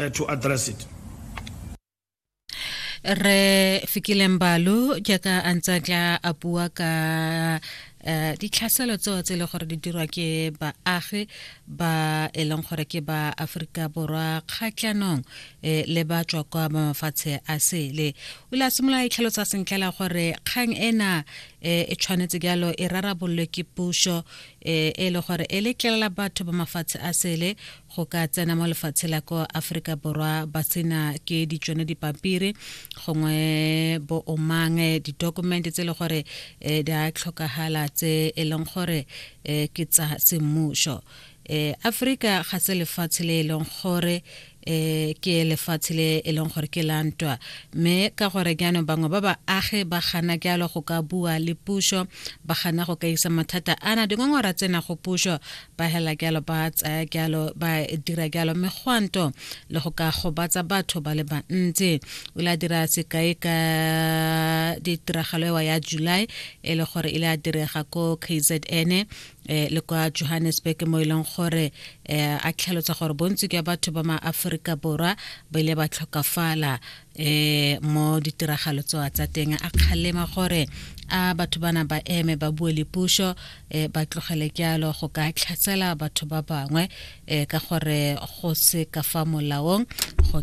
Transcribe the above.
uh, to address it. re fikile mbalo jaaka a ntse a tla a bua ka um ditlhaselo tseo tse e le gore di dirwa ke baagi ba e leng gore ke ba aforika borwa kgatlhanong um le ba tswa kwa ba mafatshe a sele o ile a simolola itlhalosa sentlhela gore kgang ena um e tshwanetse jalo e rarabololwe ke puso e e le gore e letlelela batho ba mafatshe a sele go ka tsena mo lefatshe la ko aforika borwa ba sena ke ditsone dipampiri gongwe bo omang eh, ditokumente tse e le gore um di a tlhokagala tse e leng gore um ke tsa semmuso um aforika ga se lefatshe le e leng gore eh ke lefatshe le e leng gore ke la ntwa mme ka gore jaanong bangwe ba baagi ba gana jalo go ka bua le puso ba gana go ka isa mathata ana dingongora tsena go puso ba hela jalo ba tsaya jalo ba dira jalo mme gwanto le go ka gobatsa batho ba le bantsi o ile a dira sekai ka ditiragalo ewa ya july e le gore e le a direga ko kzn eh le kwa Johannesburg mo ileng e gore eh a tlhalotsa gore bontsi ke batho ba maaforika borwa ba ile ba tlhokafala eh mo ditiragalo tsoa tsa teng a kgalema gore a batho bana ba eme ba bue le puso eh ba tlogele kyalo go ka tlhatsela batho ba bangwe eh ka gore go se ka fa molaong go